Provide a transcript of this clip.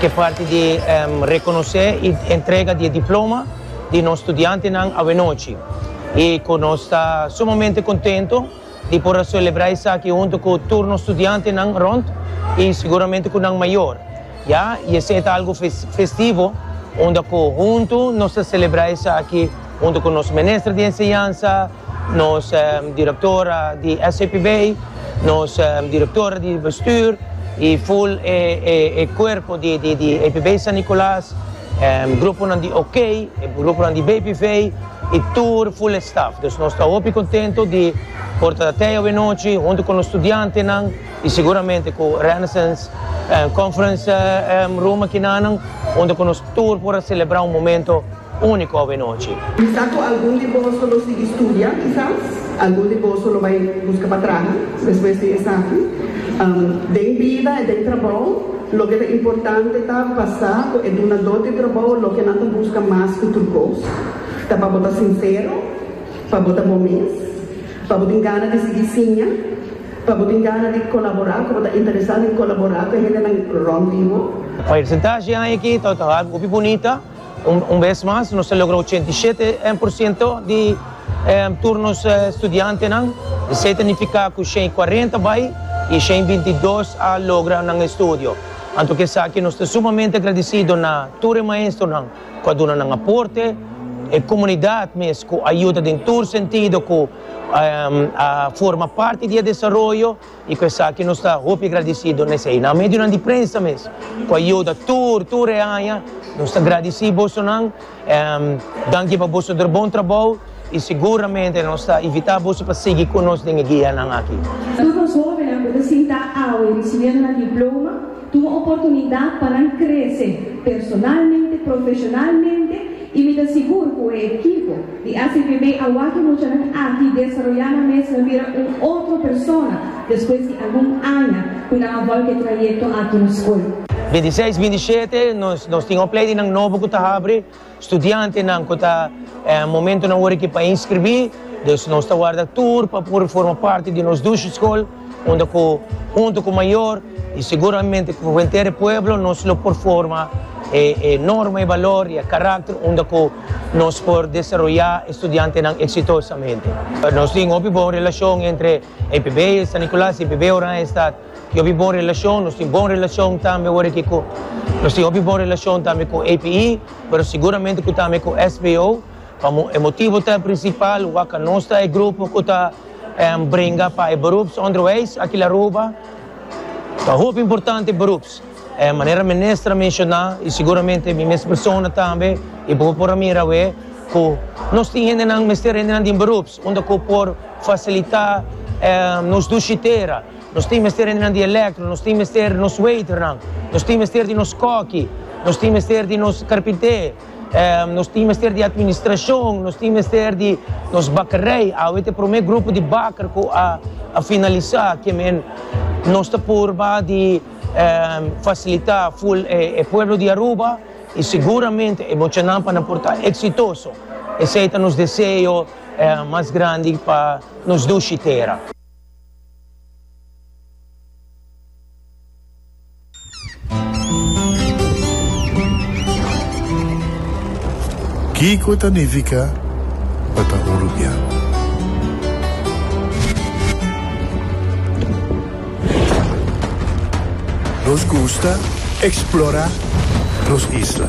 K'e parti di rekonosé i entrega di e diploma di nos studiantenan awenochi i ku nos ta sumamente kontento di por a selebrá esaki huntu ku tur nos studiantenan rònt i siguramente ku nan mayor, ya i esei ta algu festivo unda ku huntu nos ta selebrá esaki. Hunto cu nos Minister di Enseñansa, nos Directora di SCPB, nos Directora di Bestuur y full e cuerpo di EPB San Nicolas, e gruponan di OK, e gruponan di BPV y tur full e staf. Dus nos ta hopi contento di por ta tey awenochi hunto cu nos studiantenan y seguramente cu Renaissance Conference Room aki nanan hunto cu nos tur por a celebra un momento Úniko owe nochi. Bisa ku algun di boso lo sigui studia, kisas algun di boso lo bai buska pa traha despues di esaki. Den bida i den trabou, loke ta importante ta pa sa ku e dunadó di trabou loke nan ta buska mas ku tur kos ta pa bo ta sinsero, pa bo ta bo mes, pa bo tin gana di sigui siña, pa bo tin gana di kolaborá, ku bo ta interesá den kolaborá ku e hendenan rònt di bo. Presentashi aña aki ta hopi bunita. Un bes mas nos a logra ochenta i shete por siento di tur nos studiantenan, esei ta nifiká ku shen i kuarenta bai i shen i binti i dos a logra nan estudio. Anto ku esaki nos ta sumamente agradisido na tur e maestronan ku a duna nan aporte, e komunidat mes ku a yuda den tur sentido ku a forma parti di e desaroyo, I ku esaki nos ta hopi gradisido na esei. Na medionan di prensa mes ku a yuda tur, tur e aña. Nos ta gradisí bosonan. Danki pa boso der bon trabou i seguramente nos ta invitá boso pa sigui ku nos den e gianan aki. Tur nos hóbennan ku ta sinta awe risibiendo nan diploma. Tuma oportunidat pa nan krese personalmente, profeshonalmente i mi ta sigur ku e ekipo di SVB a wak e muchanan aki desaroyá nan mes nan bira un otro persona despues di algun aña ku nan a volta e trayekto aki na skol. Bintiseis, bintishete nos tin un plei di nan nobo ku ta habri. Studiantenan cu ta momentonan ora ki pa inscribí, dus nos ta warda tur pa por forma parti di nos dushi scol, unda cu hunto cu mayor y seguramente cu henter e pueblo nos lo por forma e norma, e balor y e caracter unda cu nos por desaroya e studiantenan exitosamente. Nos tin hopi bon relacion entre EPB San Nicolas y EPB Oranje Stad. hopi bon relacion, nos tin bon relacion tambe awor aki cu, nos tin hopi bon relacion tambe cu APE, pero seguramente cu tambe cu SBO, pa e motibo ta principal wak a nos ta e grupo cu ta bringa pa e beroepsonderwijs aki la Aruba, ta hopi importante beroeps, manera minister a menciona y seguramente mi mes persona tambe y bo por a mira awe cu nos tin hendenan mester hendenan den beroeps unda cu por facilita nos ducitera. Nos tin mester hende nan di elektro, nos tin mester nos weiternan, nos tin mester di nos kòki, nos tin mester di nos karpintè, nos tin mester di atministrashon, nos tin mester di nos bakerei. Awe ta e promé grupo di baker ku a finalisá ke men. Nos ta purba di fasilitá ful e pueblo di Aruba i seguramente e bochanan panan por ta eksitoso. Esei ta nos deseo mas grandi pa nos dushi tera. Kiko ta nifica pa ta oruguia? Nos gusta explora nos isla.